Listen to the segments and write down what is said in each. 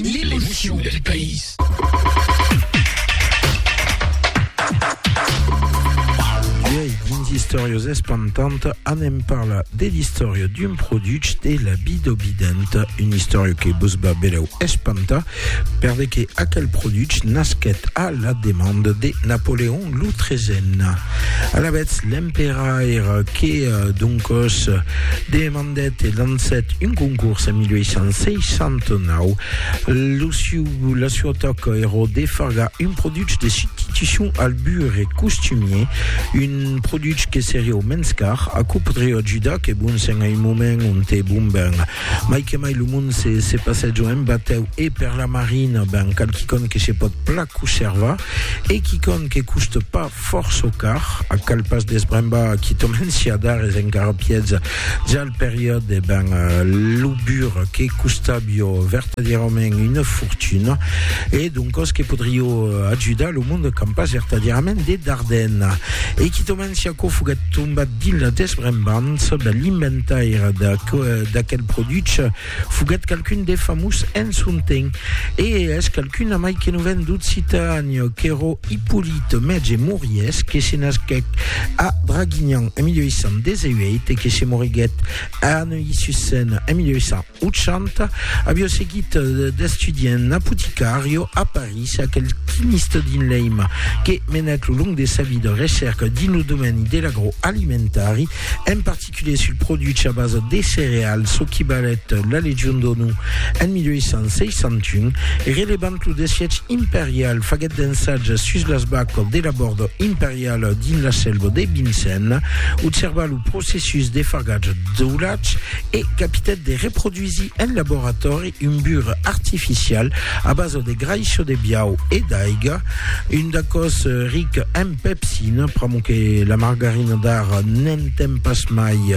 L'emotion del país. Uèi, dins Istòrias Espantant, anem parlar de l'istòria d'un produch de la bidobidenta, una istòria que vos va belèu espantar, per de que aquel produch nasquèt a la demanda de Napoleon lo Tresen. Alavetz, l'emperaire que, doncòs, demandèt Fondet e lancèt un concors en 1869. Lo siu, la sua taca èra de fargar un produch de substitucion al burre costumier, un produch que seriá mens car, aquò podriá ajudar, que bon sent a un moment onte, bon ben, mai que mai lo mond se, se passèja en batèu e per la marina, ben, cal quicòm que se pòt plan coservar e quicòm que custa pas. Fòrça car, a cal pas desbrembar qui tomencia dar es engarrapièds jal periòd e ben lo bur que costabio vertadierament una fortuna e doncos que podrio ajudar lo monde qu'an pas vertadierament de darden e qui tomencia quò foguèt tombat dins la desbrembança de l'inventaire d'aquel produch Foguèt qualqu'un de famós en son temps, e es qualqu'un amai que non ven d'Occitàn, qu'èro Hippolyte Mètge Moriès, que se nasquèc a Draguignan en 1818 e que se moriguèt a Neuilly-sur-Seine en 1880, avió seguit d'estudiant apoticario a París, aquel quimiste dins l'eim que menèt lo long de sa vida recèrca dins lo domèni de l'agroalimentari, en particular Calculet sul produch a basa de cereal, çò qui balhèt la Legion d'Onu en 1861, relevant lo desièch imperial, faguèt d'ensatges sus las vacas de labòrd imperial dins la selva de Vincennes, observà lo processus de fagatge d'aulatge e capitèt de reproduisir en laboratòri un bur artificial a basa de graisso de biau e d'aiga, un dacòs ric en pepsina, pr'amor que la margarina d'ara n'en ten pas mai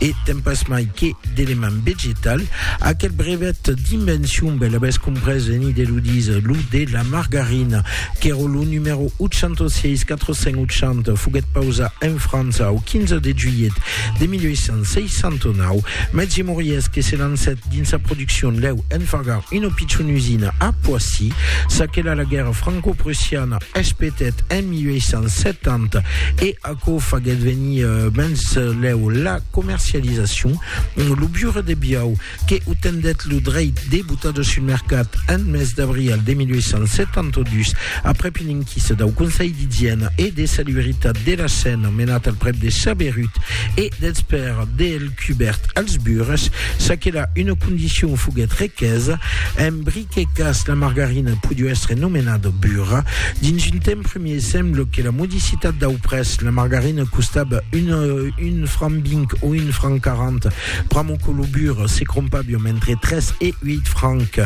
e ten pas mai que d'element vegetal. Aquel brevet d'invencion bèl avès comprés en Ideludis lo de la margarina, qu'èra lo numèro 806480, foguèt pausat en França au 15 de julhet de 1869, mètge Moriès que se lancèt Dins sa produccion lèu enfagar una pichona usina a Poissy. S'aquela la guèrra franco-prussiana espetèt en 1870 e aquò faguèt venir mens lèu la comercializacion. Lo Biure de Biau, que otendèt lo dreit de botar-lo sul mercat en mes d'abrial de 1872, aprèp una enquisa dau Conselh d'igièna e de salubritat de la Sena menat al prèp de Chaberut e dels pèrs del cubèrt als bures, çaquelà una condicion foguèt requesa, en brique cas la margarina podiu èstre nomenada bura. Dins un temps premier sembla que la modicitat dau prètz, la margarina costava un, un franc vinc o un franc quarant, pr'amor que lo bure se crompaviom entre tres e ueit francs,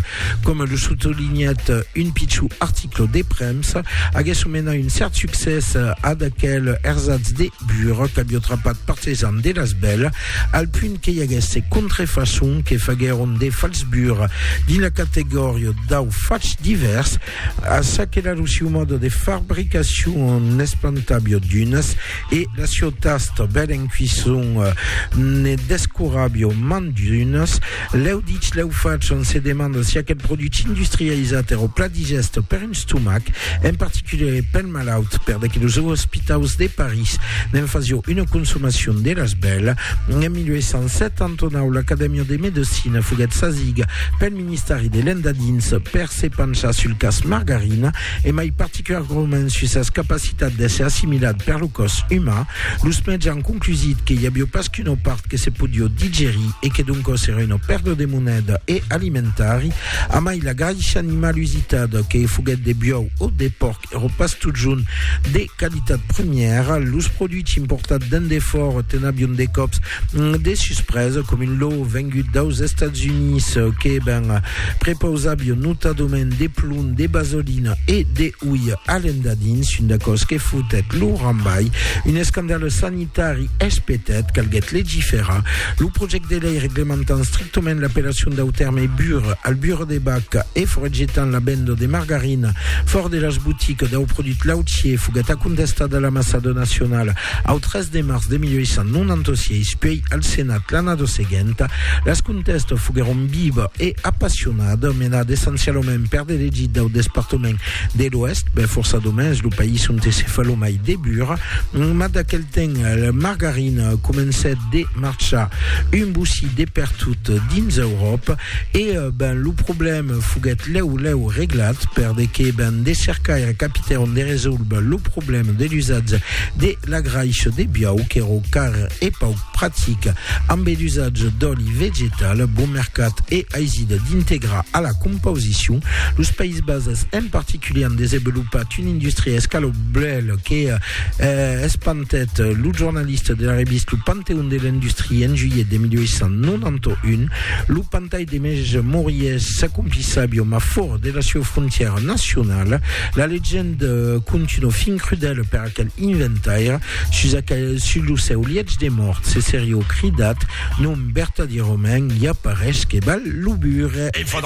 coma lo sotolinhèt un pichó article de premsa, aguèsse menat un cèrt succès ad aquel ersatz de. Burot avió trapat partisans de las bèl al punt que i aguèsse contrefaçon que faguèron de falsbur dins la categòria dau fach divèrs, a ça que la lo siu mòde de fabricacion n'espantavió d'unes e la siu tasta bèl en cuisson ne descuravió mand d'unes. Lèu dich, lèu fach, on se demanda si aquel produch industrializat èra o plat digèste per un stomac, en particulièr e pel. malaut, per de que los ospitaus de París ne'n fasió una consomacion de las bèla. En 1879, l'Acadèmia de Medecina foguèt sasiga pel ministèri de l'Endadins per se penchar sul cas Margarina e mai particulargrament sus sas capacitats d'èsser assimilat per lo còs uman. Los mètges an conclusit que i avió pas qu'una part que se podió digerir e que doncòs èra una pèrda de moneda e alimentari. Amai la graisha animal usitada, que foguèt de biòu o de pòrc, Ero pas totjorn de qualitat premièra, los produits importats d'en defòra te'n avion de còps de suspresa, com un lò vengut daus Estats Units que ben prepausavion notadament de plom, de basolina e de uilh alendadins, un d'aquò's que fotèt lo rambalh, un escandale sanitari. Tari Espetet, calguèt legiferar lo projècte de lei reglementant strictament l'apellacion dau tèrme bur, albura de bac, e foragetant la venda de margarina fòrt de las boticas dau produch lautier, foguèt acontestat a l'Ambassada nacionala au 3 de març de 1896, puèi al Senat l'annada seguenta. Las contèstas foguèron vivas e apassionadas, menadas essencialament per d'elegits dau despartament De l'oèst, ben fòrça domens, lo país onte se fa lo mai de bur, mas d'aquel temps la margarina comencèt de marchar un bossí de pertot dins Euròpa e ben lo problèm foguèt lèu lèu reglat per de que ben de cercaires capitèron de resoldre lo problèm de l'usatge de la graish de biau qu'èro car e pauc pratic ambe l'usatge d'òli vegetal bon mercat e aisit d'integrar a la compausicion. Los Païses Bases en particulier an desevolupat una industria escaloblèl que eh, espantèt lo jornalista de la revista Lo Panteon de l'Industrie en juilhet de 1891. Lo pantai de mèj Moriès s'acomplissa aviom a fòrt de la sieu frontièra nacionala. La legenda continua fin crudèla per Quel inventaire sus aquel sus lo seu lietz de mòrt se serió cridat nom vertadièrament i aparesch que val lo bure.